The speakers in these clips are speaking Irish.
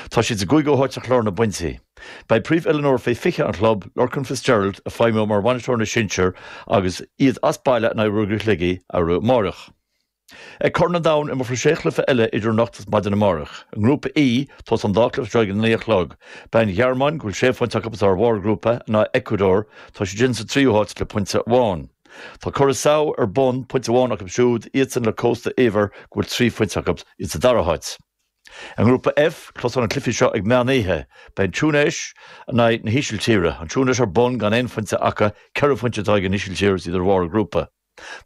Tá siad sa gcúigiú háit ar chlár na bpointí. Beidh príomhoiliúnóir faoi 20 an chlub, Lorcan Fitzgerald, ag feidhmiú mar bhainisteoir na sinsear agus iad as baile in aghaidh Ruagairí Shligigh arú amáireach. Ag Corn an Domhain imreofar sé chluiche eile idir anocht is maidin amáireach. I nGrúpa E, tosaíonn an dá chluiche seo ag a naoi a chlog. Beidh an Ghearmáin, go bhfuil sé phointe acu is iad ar bharr an ghrúpa, in aghaidh Eacuadór, tá siad sin sa tríú háit le pointe amháin. Tá Curaçao ar bun, pointe amháin acu siúd, iadsan le Cósta Eabhair, go bhfuil trí phointe acu, iad sa dara háit. I nGrúpa F, tosaíonn na cluichí seo ag meán oíche. Beidh an Túinéis in aghaidh na hÍsiltíre. An Túinéis ar bun gan aon phointe acu, ceithre phointe atá ag an Ísiltír is iad ar bharr an ghrúpa.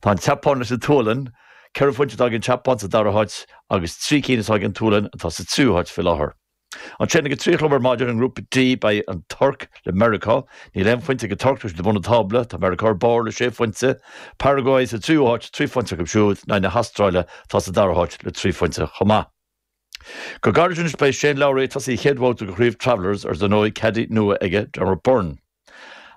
Tá an tSeapáin leis an tSualainn. Ceithre phointe atá ag an tSeapáin sa dara háit agus trí cinn atá ag an tSualainn atá sa tríú háit faoi láthair. Ansin ag a trí a chlog ar maidin i nGrúpa D beidh an Tuirc, le Meiriceá, níl aon phointe ag an Tuirc is iad ag bun an tábla, tá Meiriceá ar barr le sé phointe, Paraguay sa tríú háit, trí phointe acu siúd, in aghaidh na hAstráile atá sa dara háit le trí phointe chomh maith. Go gairid anois beidh Shane Lowry ag tosaí a chéad bhabhta de Chraobh Travellers agus ar ndóigh caddy nua aige, Dermot Byrne.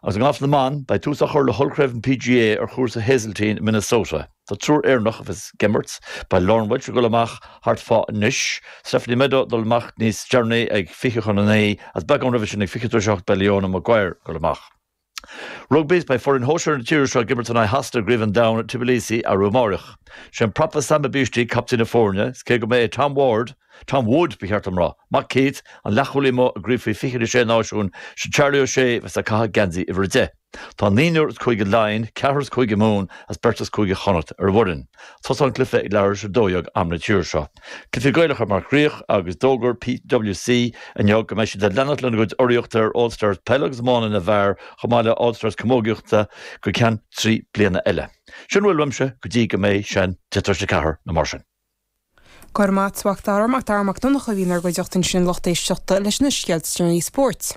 Agus i ngalf na mban, beidh tús á chur le hollchraobh an PGA ar chúrsa Hazeltine i Minnesota. Tá triúr Éireannach fós ag imirt. Beidh Lauren Walsh ag dul amach thart fá anois, Stephanie Meadow ag dul amach níos deireanaí ag 20 chun 9 is beagán roimhe sin ag 20 tar éis 8 beidh Leona Maguire ag dul amach. Rugbaí, Beidh foireann shóisear na tíre seo ag imirt in aghaidh Shasana i gCraobh an Domhain i Tbilisi arú amáireach. Sé an prapa Sami Bishti captaen na foirne, is cé go mb'é Tom Ward, Tom Wood ba cheart dom rá, mac Keith, an leathchúlaí amuigh i gcraobh faoi 20 na Sé Náisiún, is é Charlie O'Shea bheas ag caitheamh geansaí uimhir 10. Tá naonúr as Cúige Laighean, ceathrar as Cúige Mumhan agus beirt as Cúige Chonnacht ar an bhfoireann. Tosaíonn an cluiche ag leathuair tar éis a dó dhéag am na tíre seo. Cluichí Gaelacha mar chríoch agus d'fhógair PWC inniu go mbeidh siad ag leanacht lena gcuid urraíochta ar All Stars Peile agus Iomána na bhFear chomh maith le All Stars Camógaíochta go ceann trí bliana eile. Sin a bhfuil uaimse go dtí go mbeidh sé ina 10 tar éis a 4 nó mar sin. Go raibh maith agat a Mhac Dara, Mac Dara Mac Donncha, a bhí inár gcuideachta ansin a lucht éisteachta leis na scéalta is deireanaí spóirt.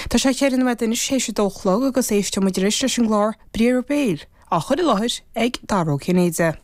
Tá sé ceithre nóiméad anois tar éis a dó a chlog agus éisteoidh muid anois leis an gclár Briathra Béil á chur i láthair ag Dara Ó Cinnéide.